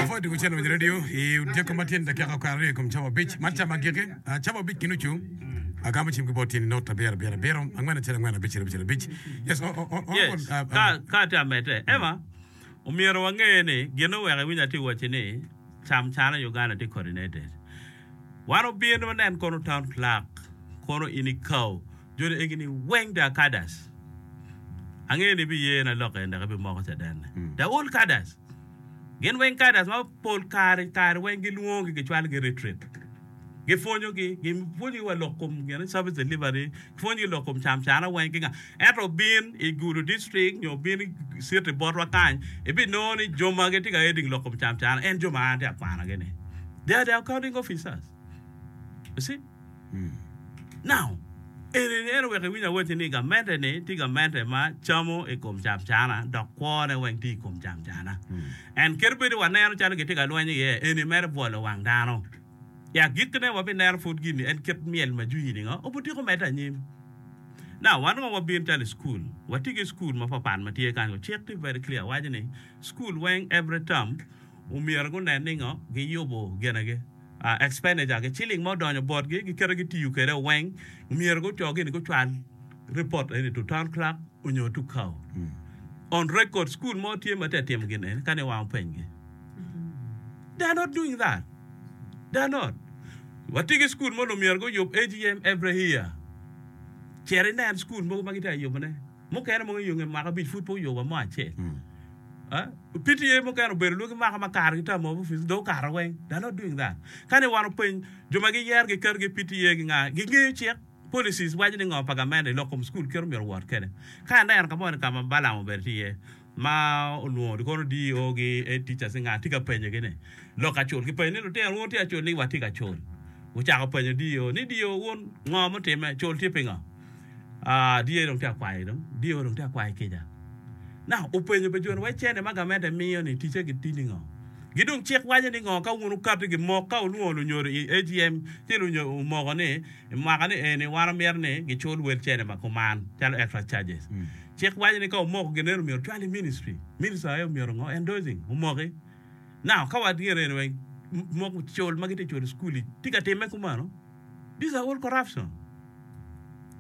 Pwod wucito winyo redio i Odiko ma tyen dakika okato aryo i kom cawa abic. Man cawa agikki, ah, cawa abic ki nucu. Agamo cim ki bot in inot abiro, abiro, abiro, angwen acel, angwen abic acel, abic abic. Yes, o, o, o, o, Yes, ah, ka, ah, ka atye ka medde, Emma, omyero wange ni, gin oweko iwinyo atye ka wacci ni, cam cana i Uganda tye coordinated. Wan obino wanen kono town clerk, kono in ikau. Joni egini weng da Kadas. Angeyo ni ibiye na lok en dok ibimoko cadenne. Da ul Kadas. Gin weng Kadas ma pol kare kare weng gilwongogi gicwalo gi retreat. Gipwonyo gi, gipwonyo gi wa lok kom gin service delivery, gipwonyo gi lok kom cam cana weng ki nga. Ento obin i Gulu district nyo obin i city botwa kany, ibinongo ni joma gitye ka heading lok kom cam cana en joma an atye akwanogi ni they are the accounting officers. You see? Eni mito wek iwiny awacci ni gamente-ni tye gamente ma camo i kom camcana dok kwone weng tye i kom camcana. En kit bedo waneno calo gitye ka lweny iye eni mere bwolo wang dano. I agikkine, wabineno pud gin en kit myel ma jwi nigo obutyeko medde anyim. Wan onongo wabino calo i cukul, watye ki cukul mapatpat ma tye kany-ngu. Cik tye very clear waco ni cukul weng every term omyero gunen ni ngo? giyubo ginigi. expenditure ki ciling ma odonyo botgi giketo gitiyo kwede weng myero guco gini gucwal report eni to town clerk onyo to cow on record school mo tye ma tye ka timo gin eni ka ni wang openy gi they are not doing that they are not watye ki school mogo myero guyub AGM every year cit inen school mogo ma gitye ka yubone. Mukene mogo i nge mwaka abic pud pe oyuba mo acel. PTA mukene obedo lwaki mwaka ma kargi term of office dong okato weng. They are not doing that. Ka ni wan openy jo ma giyero giketogi i PTA gi nga? Gingeyo cik, policies, waco ni ngo pa gamente i lok kom school kit omyero owot kwede. Ka ineno ka moni ka ma Balaam obedo tye iye, ma olwongo kono DO gi Head Teachers ni nga tye ka penyo gi ni lok acul ki penyo ni lutino wun wutye acul ni wa tye ka cul wucako penyo DO ni DO wun ngo mutime cul tye pingo aa DO dong tye ka kwayo dong DO dong tye ka kwayo kica na openyo be joni wai cene ma gamente miyo ni ticce gi tye ningo gi dong cik waco ni ngo ka wun wukato gi mok ka wulwongo lunyodo i AGM ci lunyodo omoko ni mwaka ni eni wan omyero ni gi cul wel cene ma kuman calo extra charges. Cik waco ni ka omoko gin eni omyero ocwal i ministry. Minister aye omyero ngo endorsing omoki. Now ka wat gin eni weng moko cul ma gitye cul school i tye ka time kumano these are all corruption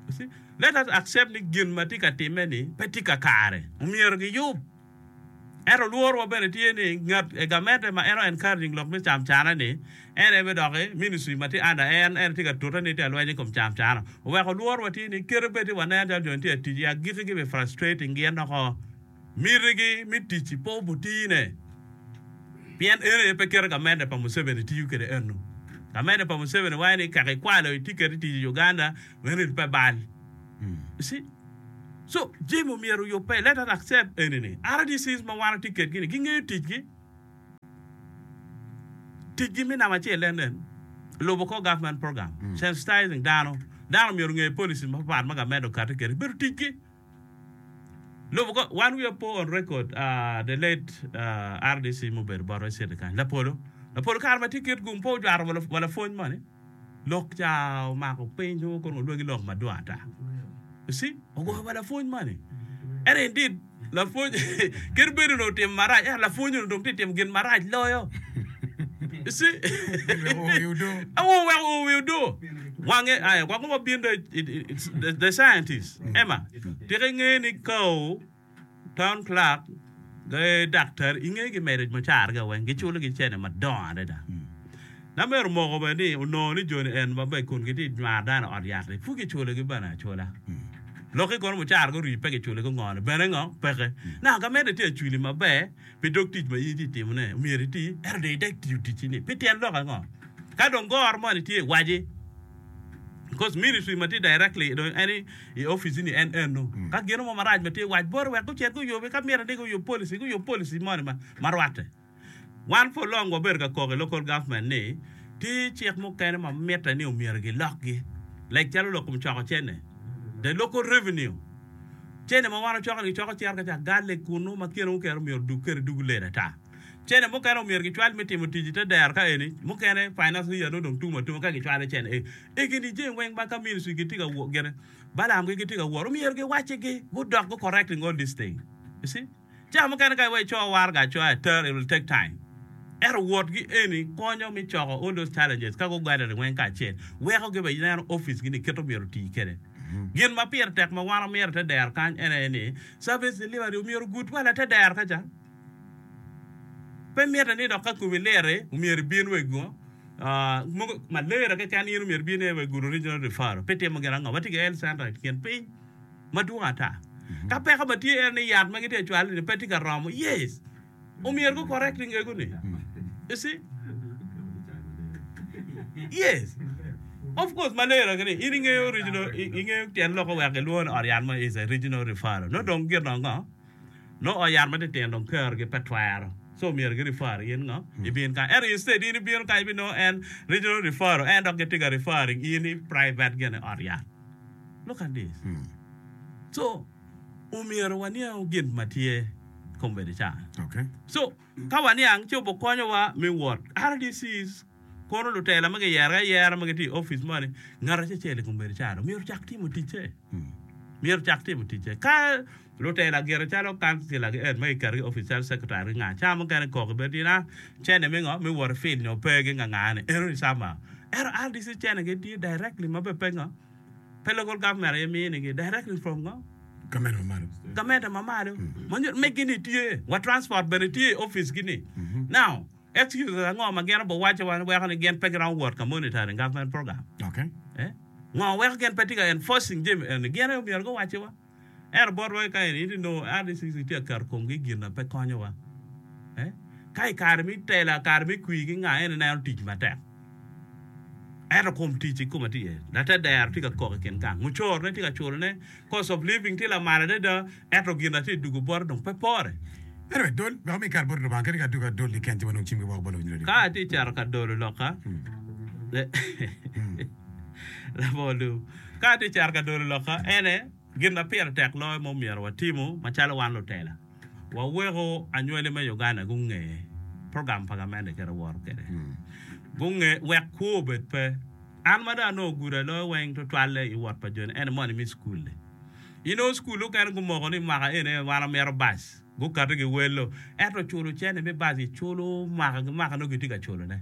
you see let us accept ni gin ma tye ka time ni pe tye kakare omyero giyub. Ento lworowa bene tye ni ngat gamente ma en o encouraging lok me cam cana ni en aye me doki ministry ma tye under en, en aye tye ka tute ni tye ka lweny i kom cam cana. Oweko lworowa tye ni kite bed ni wanen calo joni tye ka tic i agikki gibi frustrating gin doko. Mitigi me ticci pe obutine pien eno aye pe kite gamente pa Museveni tiyo kwede eno. Gamente pa Museveni wango ni kaka ikwalo itye kede tic i Uganda, eno pe bal. You see? So, jami omyero oyubbe. Let us accept eni-ni, RDCs ma wan watye kedgi-ni, gingeyo ticgi. Ticgi me namba acel en nen, lubo kor government program, sensitizing dano. Dano omyero onge policies mapapat ma gamet okati kede. Bedo ticgi. Lubo kor, wan wiwa po on record, the late RDC mubedo bot Rwaciti kany, Lapolo. Lapolo kare ma tye Kitgum pe ojwato wa lapwony moni. Lok ca omako piny nongo kono olwagi lok madwong ata. You see? Ogwoko pa lapwony moni. Ento indeed, lapwony kit bedo onongo otimo marac, ento lapwony onongo dong tye ka timo gin marac loyo. You see? Oweko oo i odoo. Awo oweko oo i odoo. Wange aye, wange wabin dong i- i- i- the scientist. Emma, tika ingeyo ni ka oo Town clerk ki daktari inge gi marriage macar ga weng giculo gi cene madongo adada. Na myero moko bene ni onongo ni joni en ma bene kun gitye nywar dano i ot yat ni pud giculo gi bene acula. Lok ki kono mucara guri pe giculo ki ngo ni bene ngo peke. Naka ka mede tye acwili maber pi dog tic ma in itye timo ne myero iti ento dong idek tiyo ticci ni pi tyen lok ango. Ka dong goro moni tye waci. Because ministry ma tye directly i dong en i i office ni en eno. Ka gino mo marac ma tye wac bot wek gucit guyubi ka myero ni guyub policy guyub policy moni ma ma rwatte. Wan for long wabedo ka kok i local government ni tye cik mukene ma mitte ni omyero gilokgi. Like calo lok kom coko cene. The local revenue. Cene ma wan wacoko ni gicoko cito ka ca garlic kunu ma kine wukero myero odug kede dug lel ata. Cene mukene omyero gicwal me timo tic i te dero ka eni. Mukene, finance leader nongo dong tum atuma ka gicwalo cene eni. I kin i jami weng ma ka ministry gitye ka wo, gin, Balaam gi gitye ka wot, omyero giwacci gi, gudok gu correcting all these things. You see? Cawa mukene ka iwee i coo warga acoya i ter, it will take time. Ento wot gi eni konyo me coko all those challenges ka gu gathering weng kacel. Weko gi be neno office gi ni kit omyero oti kede. Gin ma pire tek ma wan wamyero i te dero kany ene ni, service delivery omyero ogud wa la te dero kaca. Pe mitte ni dok ka komi lirri, omyero ibin wa i gu, ah, mogo malaria keken, in omyero ibin aye wa i gudo Regional Referral. Pe itimo gin ango? Watye ki Health Centre i kin piny madwong ata. Ka peko ma tye en ni yat ma gitye ka cwalo-ni pe tye ka romo, yes, omyero gu correct i ngeguni. You see? Yes. Of course, malaria gini, in ingeyo regional, i, ingeyo tyen lok-ki wek gilwongo ni ot yat mo is a Regional Referral. Nongo dong gin ango? Nongo ot yat matitino dong kargi pe twero, so myero gi refer in ngo ibin kany. Ento instead in ibino kany ibinongo en regional referral en dok gitye ka referring in i private gene ot yat. Look at this. So omyero waniang gin ma tye kombeddi ca. So ka waniang ci obikonyowa me wot. RDC is. Kono lutela ma giyergi ayera ma gitye i opic moni, ngat acecel i kom bedo calo myero ocak timo ticce. Myero ocak timo ticce. Ka lutela gire calo kansila ki ed ma giketogi i opic calo secretary ki nga, cawa mukene kok i bedo tina cene me ngo? Me wot i field nyo pe gi ngangane eno ni somehow. Ento RDC cene gi tye directly ma be pe ngo? Pe local government aye minigi. Directly from ngo? Gamente ma malo. Gamente ma malo. Ma nyuto megi ni tye. Wa transport bene tye i opic gi ni. Now. Ento yo ango ma gin obiwacce wa ni weko ni gin pe giromo wot ka monitoring government program? Ngo weko gin pe tye ka enforcing jami eni? Gin aye omyero guwacci wa. Ento botwa kika eni itye nongo RDCC tye ka keto komgi i gin na pe konyo wa. Ka i kare me tela, kare me kwir ki nga eni ineno tic matek. Ento kom tic i kome tye iye. Later dero tye ka kok i kin gang. Mucorone tye ka curone. Cost of living tye lamal adada, ento gin atye dugo bota dong pe pore. Ento wek dol wek omi kare bot Lubanga kadi ka adwogi adol i ken jo ma nongo cimgi woko bot lawiny rwodigi. Ka atye cito ka dolo lokka, Labongo lum. Ka atye cito ka dolo lokka, en aye. Gin ma pire tek loyo ma omyero watimu macalo wan lutela, waweko anywali me Uganda gunge program pa gamente kit awoto kwede. Gunge wek kwo obed pe. An ma dong anongo gudo i loyo weng tutwalle i wot pa joni ene mono imi cukul-li. Inongo cukul mukene gumoko ni mwaka eni wan wamito bac, gukati giwello, ento culo cene me bac giculo mwaka ki mwaka nongo gitye ka culone.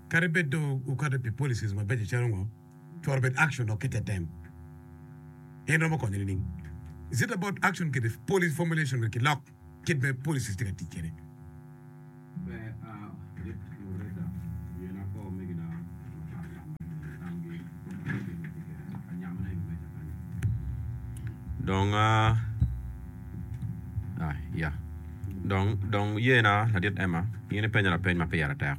Kadi bed dong wukato pi policies mabeco calo ngo, twero bed action dok ki tetem en romo konyo nining? Is it about action kede policy formulation wek kilok kit ma policies tye ka tic kede? Dong. Ah, ya. Dong, dong yena, ladit Emma, in ipenyo lapeny ma pire tek.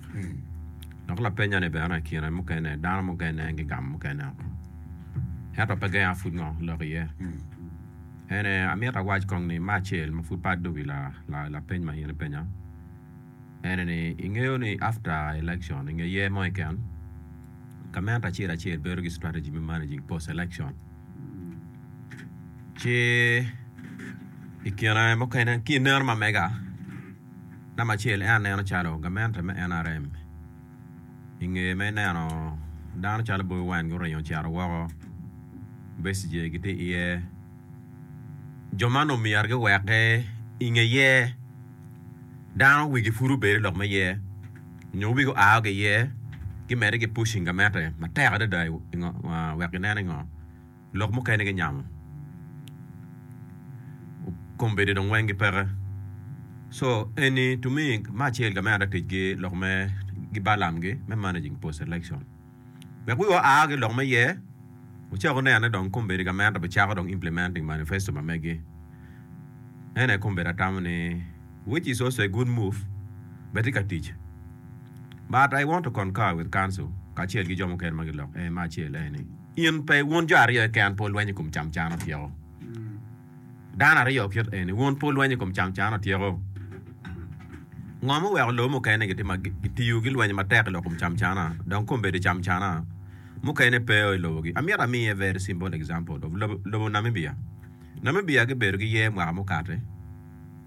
Dok lapenya ni bene i kine mukene, dano mukene gigamo mukene oko. Ento pe genga pud ngo lok iye. En aye, amito awac kong ni, me acel ma pud pe addo wi la, la, lapeny ma in ipenya, en aye ni, ingeyo ni after election, inge year mo keken, gamente acel acel bedo ki strategy me managing post election. Ci i kine mukene ki i neno ma mega, namba acel en aneno calo gamente me NRM i nge me neno dano calo Bobi Wine guringo ocito woko, Besigye gitye iye, jo ma omyero giweke i ngeye. Dano wigi pud obedo lok me yer nyo wigi oa ki iye gimedde ki pushing gamette matek adada wek ginen ingo lok mukene ginyamo kombeddi dong weng gipeke so eni to me acel gamente ticgi lok me gibalam gi me managing post election. Wek wiwa oa ki lok me yer, wucak wunene dong kombeddi gamente obicako dong implementing manifesto ma megi. En aye kombeddi atamo ni which is also a good move bene tye ka tic. But I want to concur with council kacel ki jo mukene ma gilok en me acel en ni in pe wun jo aryo keken pe wulwenyo i kom camcana pyeko. Dano aryo kit eni, wun pe wulwenyo i kom cancan atyeko? Ngo ma oweko lobo mukene gitiyo ki lwenyo matek i lok kom camcana dong kong bedo camcana mukene peo i lobogi? Amyero amiye a very simple example of lobo Namibia. Namibia gibedo ki yer mwaka mukate,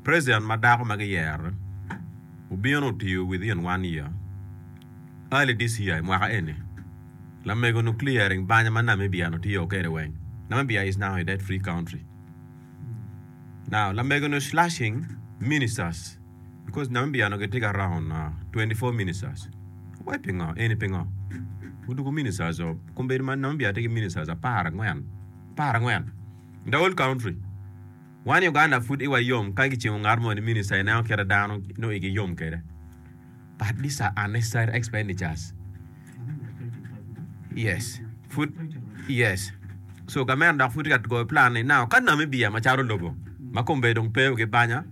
president ma dako ma giyero obino otiyo within one year, early this year, i mwaka eni. Lamego nuklia ring banya ma Namibia-nu tiyo kwede weng. Namibia is now a debt-free country. Now, lamego-nu is slashing ministers because Namibia-nu gitye ki around 24 ministers. Wai pingo? Eni pingo? Gudugo ministers-o. Kombeddi ma Namibia tye ki ministers apar angwen. Apar angwen. In the whole country. Wan i Uganda pud iwa yom ka gicimo ngat mo ni minister ineno kite dano nongo igi yom kwede. But these are unnecessary expenditures. Yes. Pud yes. So gament dok pud tye ka goyo plan ni now ka Namibia macalo lobo ma kombe dong pe gi banya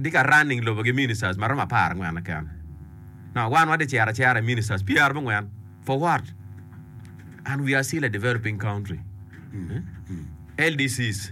tye ka running lobo ki ministers ma romo apar angwen keken. Now wan watye cero acera i ministers pyera abongwen for what? And we are still a developing country. LDCs.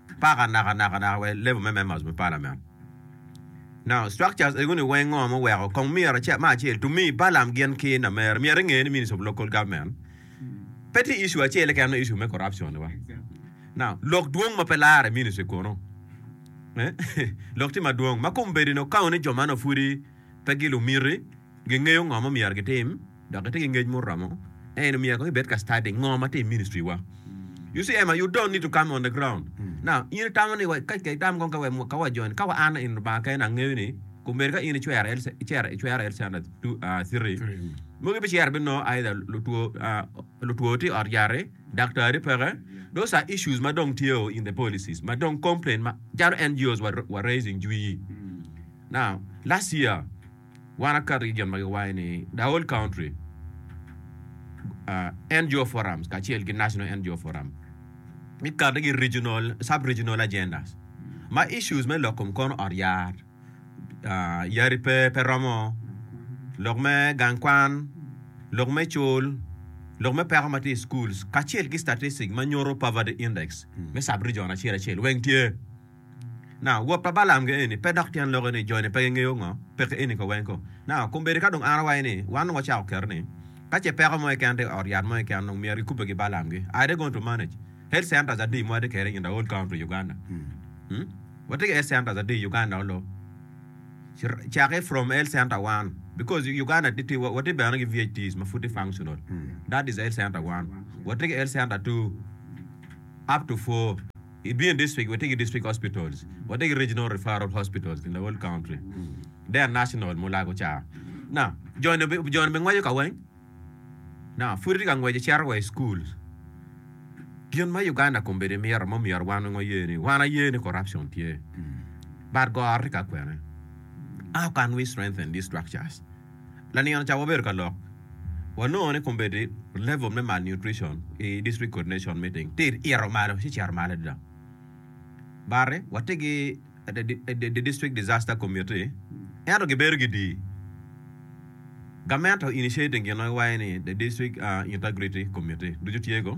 Paka naka naka naka wa i level me members me parliament. Now structures ego ni weng ngo muweko kong myero ce ma acel to me balam gin ki namere myero inge ni minister of local government pe tye issue acel keken ma issue me corruption ni wa. Now lok dwong ma pe lare minister kono eh lok tye madwong ma kombedi ni okaone jo man pudi pe gi lumiti. Gingeyo ngo ma omyero gitim dok gitye ki ngec muromo. En omyero kong ibed ka study ngo ma tye i ministry wa. You see Emma, you don't need to come on the ground. Now, in itamo ni wa, ka ka itamo kong ka wa, ka wa join, ka wa an in Lubanga kene angeyo ni kung bedo ka in icwero El, icero, icwero El Standard two, ah, three, mogo ibicero bino nongo either lutwo, ah, lutwo tye i ot yat-ti, daktari peke. Those are issues ma dong tye o in the policies, ma dong complain ma calo NGOs wa, wa raising jwi. Now, last year, Wan aka region ma giwaco ni The Whole Country uh, NGO Forums kacel ki National NGO Forum gikati ki regional, sub-regional agendas ma issues me lok kom kono ot yar, uh, yari pe, pe romo, lok me gang kwan, lok me cul, lok me peko ma tye i schools kacel ki statistics ma nyuto poverty index me sub-region acel acel weng tye. Na, wot pa Balaam ge eni pe dok tyen loke ni joni pe gingeyo ngo peke eni ko weng ko. Na, kombeddi ka dong an awaco ni wan dong wacako keto ni, ka ce peko mo keken tye i ot yat mo keken dong myero gikubbe ki Balaam gi. I dey going to manage. Health centers adi ma watye kede in the whole country Uganda? Umm. Watye ki health centers adi Uganda olo? Cake from health center one because Uganda tye watye bene ki VHTs ma pud tye functional. That is health center one. Watye ki health center two up to four. I Bini District, watye ki District Hospitals, watye ki Regional Referral Hospitals in the whole country. They are national, mulago ca. Now, joni obi- joni obingweco ka weng. Now, pud itye ka ngweco icito wa i school. Gin ma Uganda kombeddi mito, ma omyero wan weng waye ni, wan aye ni corruption tye. But goro tye ka kwene. How can we strengthen these structures? Lanino ca wabedo ka lok, wanongo ni kombeddi level me malnutrition i District Coordination Meeting tye ito malo ci cito malo adada. Bati watye ki the District Disaster Committee ento gibedo gidii. Gamente o initiating ginowaci ni the District Integrity Committee ducu tye go.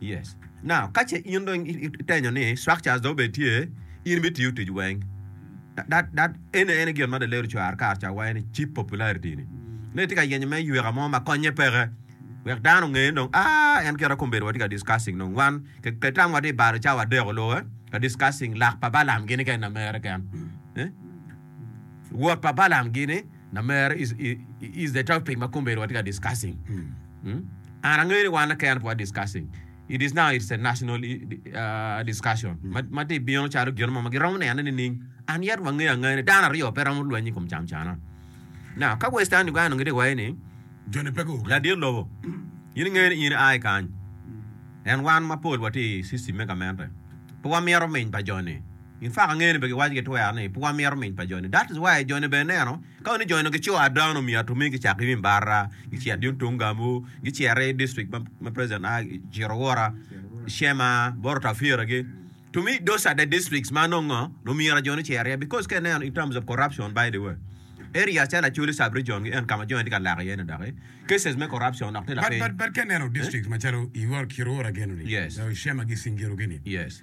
Yes. Now, ka ce in dong itenyo ni structures dong bene tye, in bitiyo tic weng. That, that, ene, ene gin ma Delero cwar kar ca waco ni cheap popularity ni. Ne tye ka yenyo me yweka mo ma konye peke. Wek dano onge ni dong, ah, en kite kong bedo watye ka discussing dong. Wan, ke, ke tam watye i balo cawa adek oluwe, ka discussing lak pa Balam gini kene na mere ken. Eh? wot pa Balaam gini na mere is is the topic ma kombedo watye ka discussing. Mm? An angeyo ni wan keken pe wa discussing. It is now it's a national i- uh, discussion. Ma ma ti bino calo gino mo ma giromo nene nining. An yet wangeyo angeya ni dano aryo pe romo lweny i kom camcana. Now ka Western Uganda onongo giti waye ni Joni pe go. ladit lobo in ingeyo ni in i ai kany. En wan mapol wati i system me gamente. Pe wamito miny pa joni. Gin faka ngene be giwaco ki twero ni pwa mito miny pa joni that is why joni be ineno ka wani joni gi co ada onongo myero omi gicak ki wim barra gicito yung tung gamu gicito i district ma president a cito wora shema boro tafira gi to me those are the districts ma nongo ngo nongo myero joni cito iye because ka ineno in terms of corruption by the way area calo acholi sub region gi en kama joni tye ka lak iye ni doki cases me corruption dok tye lapiny But, but, but ka ineno districts macalo iwor kiro wora geno ni, Yes. uh, shema gi singiro gini, yes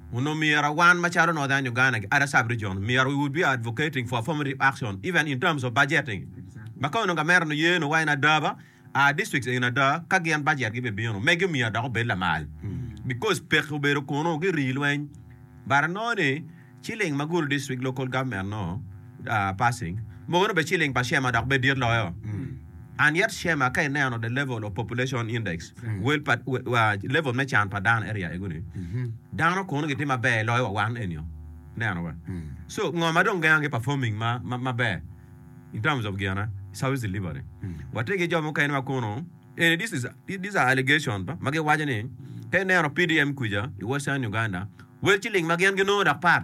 Wun omyera wan macalo Northern Uganda gi Ada Sub Region omyera we would be advocating for affirmative action even in terms of budgeting maka onongo gamera ni yee nongo wa in ada ba our districts in ada ka gin budget gi be bino megi omyera dok obed lamal because peke obedo kunu girii lweny but anongo ni ciling ma gulu district local government nongo passing mukene obedo ceiling pa Shema dok bed dit loyo and yet Shema ka ineno the level of population index well pa level me can pa dano area ego ni dano kono gitye maber loyo wa wan enio neno wa so ngo ma dong gengo ki performing ma ma maber in terms of gina service delivery watye ki jo mukene ma kono and this is these are allegation ba ma giwaco ni ka ineno PDM kuca i western Uganda well ceiling ma gin ginongo dok pat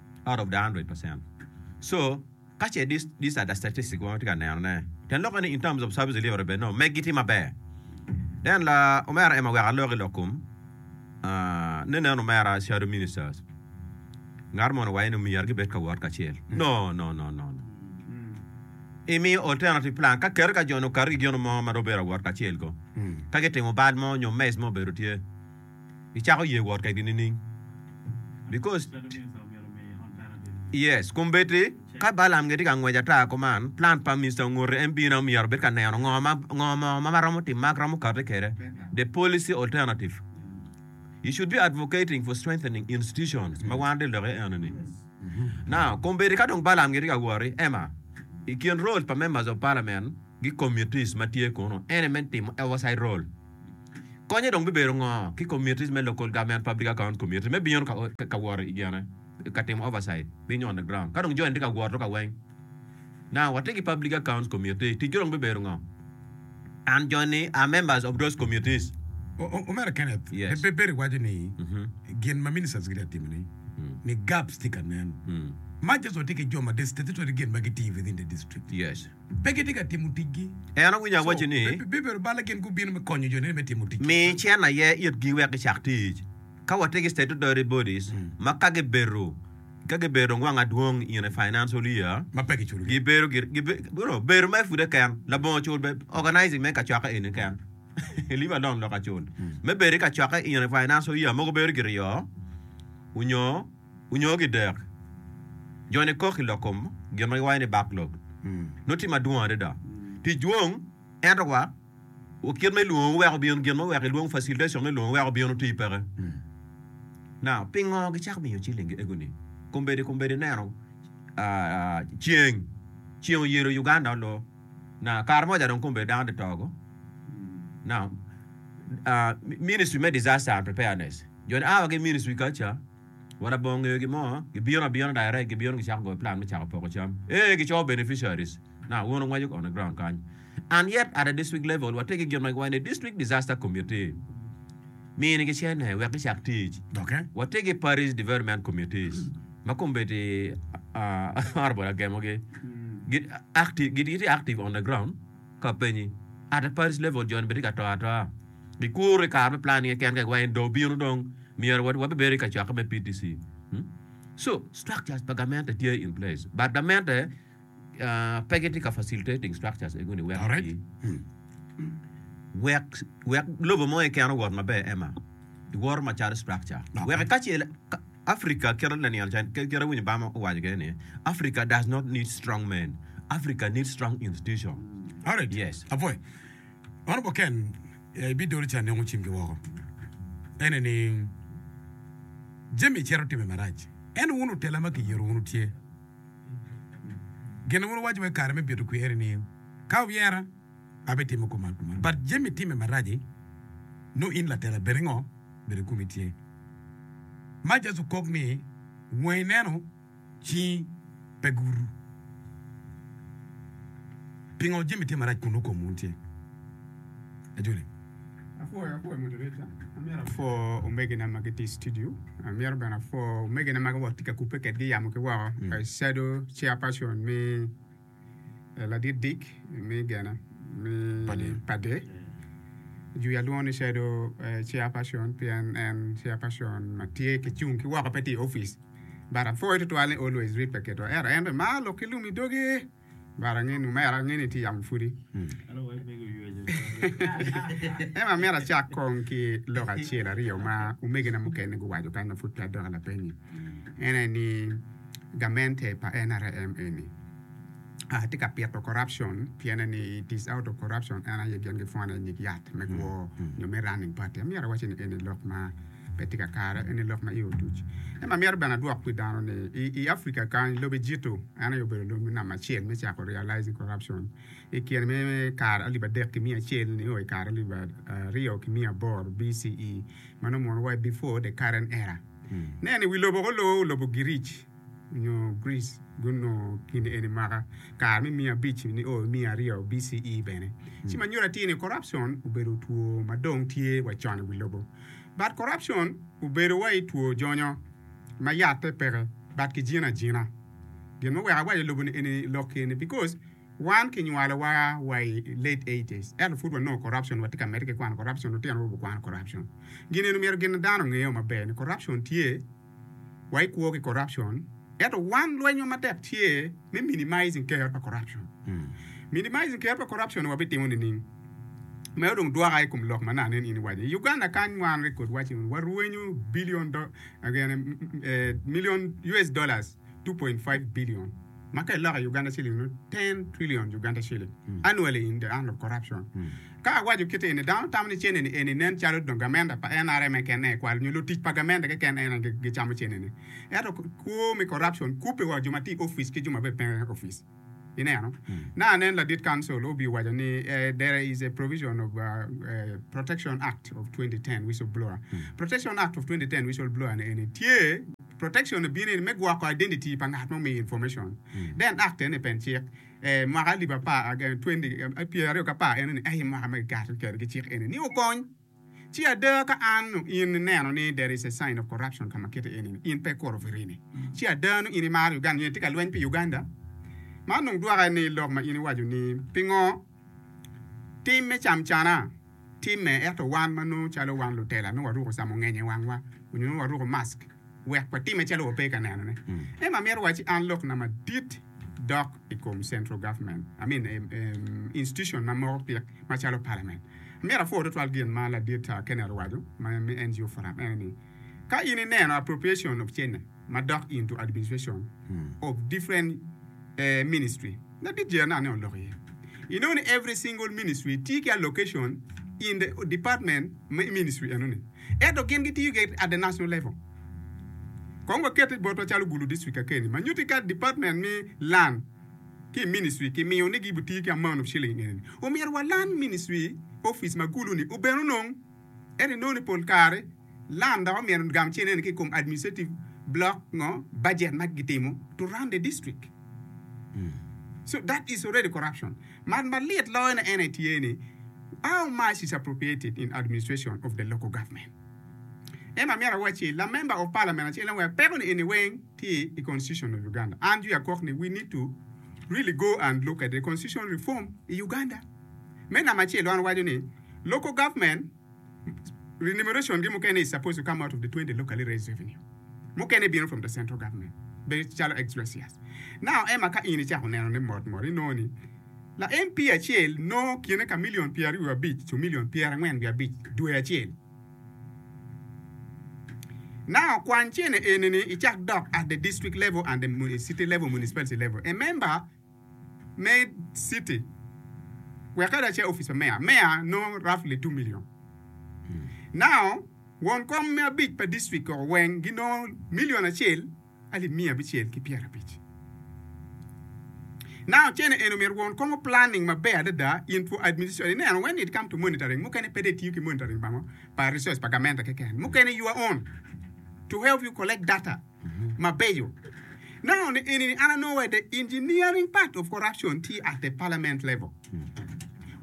out of the hundred percent so ka ce this these are the statistics ma watye ka neno ne ten lokke ni in terms of service delivery bed no megi tye maber then la omera Emma wek alok i lok kom ah, ne nen omera shadow ministers ngat mono waye ni myero gibed ka wot kacel no no no no no imiyo alternative plan ka keri ka joni okato ki gino mo ma dong bedo awot kacel ko ka gitimo bal mo nyo mess mo obedo tye gicako ye wot kekgi nining? Because yes kombeddi ka Balaam gitye ka ngwec ata kuman plan pa Mister ongote en bino myero obed ka neno ngo ma ngo mo ma maromo timo ma romo kati kede the policy alternative you should be advocating for strengthening institutions ma wan de loke eno ni now kombeddi ka dong Balaam gitye ka woti ema i kin role pa members of parliament gi committees ma tye kunu ene me timo oversight role Konye dong bibedo ngo ki committees me local government, public account committee me bino ka woro i gine ka timo oversight, being on the ground. Ka dong jo eni tye ka woro ka weng, now watye ki public accounts committee, ticgi dong bibedo ngo? And jo ni are members of those committees. Omera Kenneth, Yes. Pe Perry waco ni gin ma ministers gitye ka timo ni, ni gaps tye ka nen. Man just watye ki jo ma the statutory gin ma gitiyo within the district. Yes. pe gitye ka timo ticgi. En owinyo awaci ni. Bibedo bal-le gin gubino me konyo jo-ni me timo ticgi. Mi cen aye itgi wek gicak tic. Ka watye ki Statutory Bodies ma ka gibedo, ka gibedo dong wang adwong in a financial year, Ma pe kiculo-gi. gibedo gire, gibe, no, bedo mere pud eken, labongo cul be, organizing me kacokke eni eken, leave alone loko acul, me bedo i kacokke in a financial year mogo bedo gire yo, onyo. Onyo ki dek, joni kok i lok kom gin ma giwaco ni backlog nongo tye madwong adada. Tic dwong, ento wa kit ma ilwongo wuweko bino, gin ma wuweko ilwongo facilitation me lwongo wuweko bino tye peke. Now, pingo gicako miyo ciling ego ni? Kombeddi kombeddi ineno ceng, ceng oyelo Uganda olo. Now, kare moja dong kombeddi dano tye toko. Now, ministry me disaster and preparedness. Jo ni a wa ki ministry kaca wa da bongo ngeyo gimo gibino abina direct gibino gicako goyo plan me cako poko cam ee gico beneficiaries na un ungwaco on the ground kany and yet at a district level wa tye ki gin ma giwaco ni district disaster committee mini gicene wek gicak tic Okay. wa tye ki parish development committees ma kombedi honorable agemo gi gitye active on the ground Ka openyi, Ata Paris Level joni bene tye ka to atoa? Gikuru i kare me plan nge ken kek wa en dong bino dong myero wa wabe bedo i ka cokke me PTC. Hmm? So, structures pa gamente tye in place but gamente uh, pe gitye ka facilitating structures egoni wek Correct. pi wek wek lobo mo keken owot maber Emma. Iwoto macalo structure. Okay. Wek ka ce Africa kit laniang can kit kit awinyo bama owaco kede ni Africa does not need strong men Africa need strong institution Alright. yes Apoi. Mano keken eh, ibidolo ca nongo cimgi woko. Ene ni jami cito timme marac. Ento wun otela ma kiyero wunu tye. Gin wun wuwaco wai kare me bito kwer-ri ni, Ka wuyera, a be timo koma kuman but jami time maraci nongo in latela bene ngo bene kumi tye ma just okok ni wangi neno cingi pe gutu pingo jami tye marac kun nongo kom wun tye ajoli. Apwoyo apwoyo moderator, amyero apwo omegina ma gitye i studio, amyero bene apwo omegina ma gitye ka kubbe kwedgi yamo ki woko, mm. I shadow chairperson me Ladit Dick me gena me pade jwi alwongo ni shadow chairperson pien en chairperson ma tye ki cung ki woko pe tye i ofice but apwoyo tutwal ni always read pe keto ero en be mar lok ki lum i doge but angin omera angin ni tye yamo pudi ema myero acak kong ki lok acel aryo ma omegina mukene guwaco kany ma pud pe adok lapeny-nyi en aye ni gamente pa nrm eni aa tye ka pito corruption piene ni it is out of corruption en aye gin gipwone nyig yat me kwo nyo me running party amyero awaci ni eni lok ma pe tye kakare eni lok ma i otuc en amyero bene adwok pi dano ni i Africa kany lobe jito en aye obedo lobo namba acel me cako realizing corruption i kine me kare alip adek ki miya acel nio i kare alip aryo ki miya aboro BCE meno mono wa before the current era Nen, i wi lobo ko loo lobo Giric nyo Greece gunongo gin eni mwaka kare me miya abic nio miya aryo BCE. Bene, ci ma nyuto atir ni corruption obedo two ma dong tye wa con i wi lobo. But corruption obedo wai two jonyo ma yatte peke but kijine ajina. Gin ma weko awaco lobo eni lok eni because. Wan ki nywalowa wa i late eighties ento pud wanongo corruption watye ka medde ki kwano corruption lutino orubo kwano corruption gin eni omyero gin dano ongeyo maber ni corruption tye wa i kwo ki corruption ento wan lwenywa matek tye me minimizing kero pa corruption minimizing kero pa corruption ni wabitimo nining meno dong dwoka i kom lok ma nano en in iwaco i Uganda kany wan record waco ni warwenyo billion million US dollars 2.5 billion ma ka iloko i Uganda shilling nongo 10 trillion Uganda shilling mm. annually in the hand of corruption mm. ka awaco kite eni dano tamo ni cene ni eni nen calo dong gamenda pa NRM e kene e kwalo nyo lutic pa gamenda ke kene ena gicamo cene ni ento kwo me corruption kupe wa jo ma ti office ki jo ma be pe office Ineno, na anen ladit kancil obi waco ni eh, there is a provision of uh, uh, Protection Act of 2010 Whistleblower. Protection Act of 2010 Whistleblower ni eni tye protection bini eni me gwoko identity pa ngat ma omiyo information. Then act eni pen cik. Eh, mwaka alip apar, aga, 20, eh, pyeraryo ki apar eno ni, eh, mwaka ma kikato kwede ki cik eni ni okony. Ci ada ka an nongo in ineno ni there is a sign of corruption ka ma kite eni ni in pe ikuro firini, ci ada nongo in imaro Uganda nyo itye ka lweny pi Uganda. Man dong dwoka ni lok ma in iwaco ni pingo tim me camcana timme ento wan ma nongo calo wan lutela nongo waruko camongenye i wangwa onyo nongo waruko mask. wek watime calo wape ka nenone. Emma amito wacci an lokna madit dok i kom central government, I mean, em, em, institution ma moko pik macalo parliament. Amito apwor tutwal gin ma ladit ah, Kenneth owaco ma me NGO forum en ni, ka in ineno appropriation of cene ma dok into administration of different eh, ministry, Madit jeri anaka ne olok iye. I nongo ni every single ministry tye ki a location in the department ma i ministry eno ni. Ento gin gi tiyo gire at the national level. Kong wa kete botwa calo Gulu district ka keni ma nyuti ka department me lan ki i ministry ki miyo ni gi bu tiyo ki amount of shilling eni ni. Omyero wa lan ministry office ma Gulu ni obed onong. Ento inongo ni pol kare lam dok omyero gam cente eni ki i kom administrative block ngo budget ma gitimo to run the district so that is already corruption but malit loyo ne ene tye ni how much is appropriated in administration of the local government ento amyero awaci la member of parliament acel en wek peko ni eni weng tye i constitution of Uganda and you are kok ni we need to really go and look at the constitution reform i Uganda me namba acel an awaco ni Local government renumeration gi mukene is supposed to come out of the 20 locally raised revenue. Mukene bino from the central government bedo calo ex gracias. Now Emma ka in icako nenone mot mot inongo ni la MP acel nongo kine ka million pyer aryo abic to million pyer angwen wiye abic dwe acel. Now kwan cene eni ni icak dok at the district level and the city level municipality level. A member me citi wek kadi ace opic pa meya, meya nongo roughly two million. Now won kom me abic pa district koko weng ginongo million acel alip miya abicel ki pyera abic. Now cene eno myero won kom planning maber adada in for administration ineno when it come to monitoring mukene pede itiyo ki monitoring bango pa resource pa gamenta keken mukene you are on to help you collect data. mabeco. Nongo ni eni ni an anongo wai the engineering part of corruption tye at the parliament level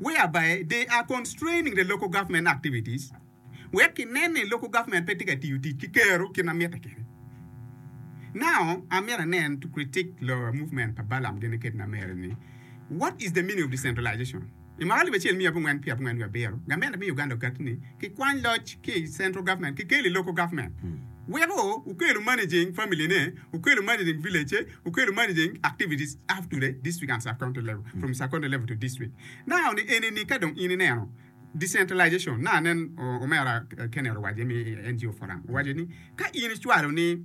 whereby they are constraining the local government activities wek ki nen ni local government pe tye ka tiyo tic ki kero kit ma mitte kene. Now amyero anen to critique the movement pa Balam gene kit na mere ni what is the meaning of decentralization? I mwaka alip acel miya abongwen pyer abongwen wiye abiro, gament amiyo Uganda ogati ni kikwany loc ki i central government kikel i local government. Weko okelo managing family ne, okelo managing village ce, okelo managing activities up to the district and sub county level, from sub county level to district. Now ni eni ni ka dong in ineno decentralization, na anen omera Kenneth owaco ni NGO forum owaco ni ka in icwalo ni,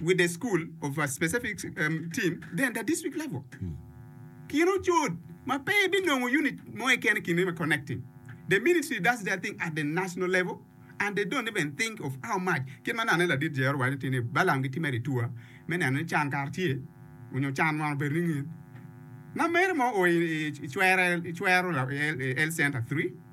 with a school of a specific um, team, then the district level. Kin ocut ma pe binongo unit mo keken kin ma connecting. The ministry does their thing at the national level and they don't even think of how much. Kin ma nane ladit Jehova waco ti ni Balaam ki Timeri tua me neno ni can kar tye onyo can man obedo ni ngin. Nameri mo o i, i, i cwere, i cwero la- i, i L Center 3.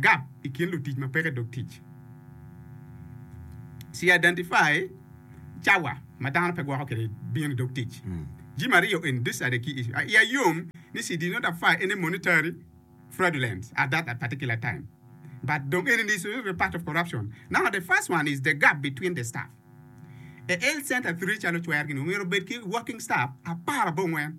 gap i kin lutic ma peke dog tic. Ci identify cawa ma dano pe gwoko kwede bino i dog tic. Jami aryo eni decide ki issue. Iya yom ni she did not apply any monetary fraudulence at that particular time but dong eni ni issue ni part of corruption. Now the first one is the gap between the staff. E health center three calo cwer gini omyero obed ki working staff apar abongwen.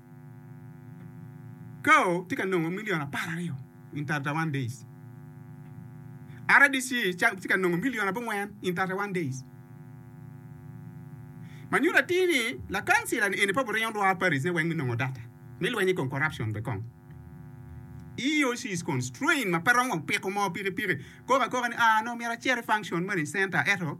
Kao tye ka nongo milion apar aryo in thirty one days. RDC tye ka nongo milion abongwen in thirty one days. Ma nyuto atir ni lakancila ni eni pe obiringo lwar Paris ne weng me nongo data me lweny i kom corruption be kong. EAC is constrained ma pe romo piko moo pikipiki koko akoka ni ah nongo myero acer i function moni center eto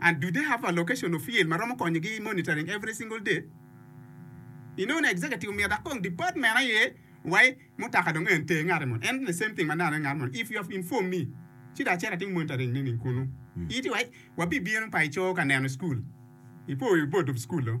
and do they have a location or field ma romo konyo gi monitoring every single day? Inongo ni executive omyero dok kong department aye wai mutaka dong en ter ngati moni and the same thing manano ngat moni if you have inform me ci dong acito atimo monitoring nining kunu iti wai wabibino pa ico ka neno school ipo wi board of school o.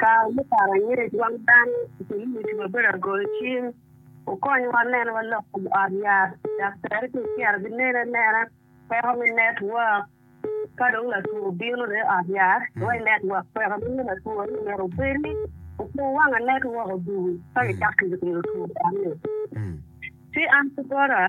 Kare me paro angec, wang dano ocimo tic maber i goyo cing. Wukonyowa neno wa lok kom ot yat, dok tere ki ociro ginen anena kweko me network. Ka dong latwo obino ne i ot yat, wa i network kweko dong me latwo ni myero obedi. Wukur wanga network odul ka gicako kidino two dano-ni. Ci an ki bota.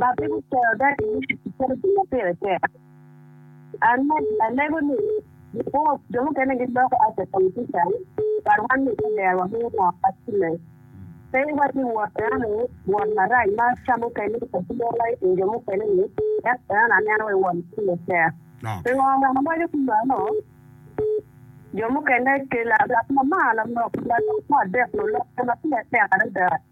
Ba pe guketo dagi ni kiketo gin ma pire tek. Alego ni gipwonyo jo mukene giloko act a politician but wan ni pe ber wamiyo ngo acime. Pe iwacci wot enoni wot marac ma ca mukene ipwonyowa i kin jo mukene ni ento enoni aneno wa i wot pire tek. Pingo omyero awaco ki meno? Jo mukene ki lab lab ma mar lamok lalok me adek lulokke ma pire tek adada.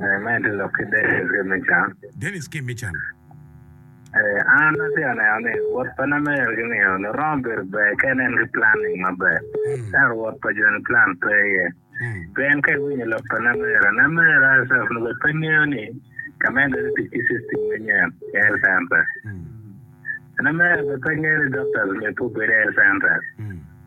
Medo lok ki Dennis ki Mican. Dennis ki Mican. An atye ka neno ni wot pa Namer ki Mion romo bedo ber ka en en ki planning maber. Ento wot pa Joni plan pe iye. Pien ka iwinyo lok pa Namer, Namer herself nongo bene pe ngeyo ni ka ma en bedo tic ki system manyen i health center. Namer bene pe ngeyo ni doctors myero pe obed i health center.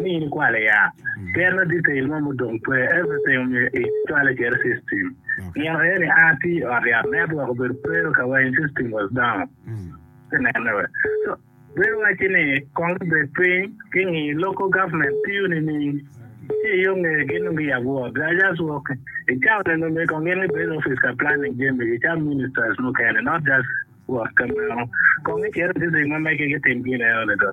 ni in ikwale ya ker na detail mo mudong pe everything omyero i cwale cere system nino aye ni a ti ot yat network obedo pero ka weng system was down ti nene we so bedo waci ni kong bi bed piny ki ngi local government tiyo ni ning ci iyo nge gi nung gi yabo ot they are just working i town eno mi kong gin gi bed office ka planning jemi gi ca ministers mukene not just work ka meno kong i cere district ma mege ki tim gin eno ni do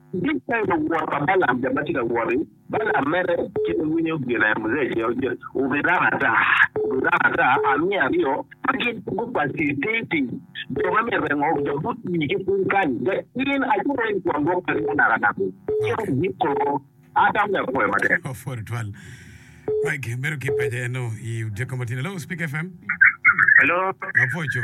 Dul pa luwot pa Balaam jo ma tye ka wot i Balaam mere kit ma winyo gin aye Muzea cel gin obirang ata obirang ata amiya aryo ma gin gupaci titi jo ma myero rengo jo but wi ki piny kany ga in aco ma in kwon gwok peri munak anak ni cito inyim koko ata me apwoyo matek. Of for twal Mike medo ki paco eno i odiko matino. Hello, Speak FM. Hello. Apoco.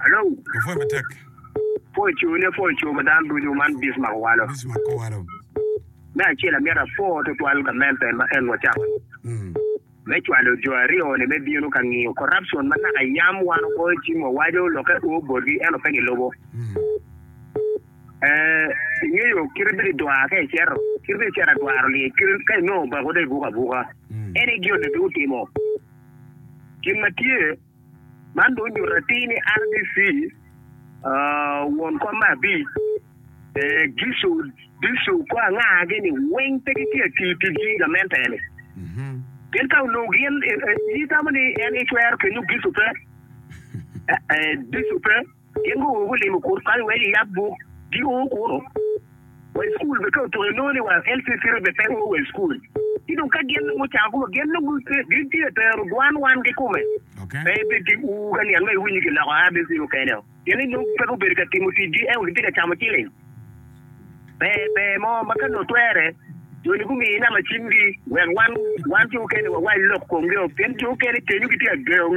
Alo. Wapwony matek. Pwony co ne pwony co ma dano ducu man Bismarck owalo. Bismarck owalo. Me acel amyero apwor twatwal gamente ma en wacako me cwalo jo aryo ni me bino ka ngiyo corruption ma naka yam wan ogoyo cim wawaco lokke o botgi ento pe gilubo. Eh, ingeyo kite bedo idwar ka icito, kite bedo icito adwaro lyec kite ka inongo obako dong ibuko abuka. Any guilt dong otimo. Gin ma tye Man dong onyuto atir ni RDC, won kom me abic, Gicu, Dicu kor angagi-ni weng pe gitye ka tiyo tic ki gamente-ni. Pien ka onongo gin, itamo ni en ecwero kenyo Gicu pe? Dicu pe. Gin guwor gulimo kor kany wa Eliab buk, gio kunu wa i cukul bene ka otuko inongo ni wa LC City bene pe oo wa i cukul. Ci dong ka gin dong gucako guwor gin dong gin tye ka tero dwan wan kikome pe ibed ki ur ka niang ma iwiny ni kiloko ABC mukene oo. Pien ni dong pe gubedo ka timo ticgi ento gitye ka camo ciling. Ber ber mo ma ka nongo twere joni gumiyo inama cimgi wek wan wan jo mukene wawac lok komgi oo pien jo mukene kenyo gitye ka gengo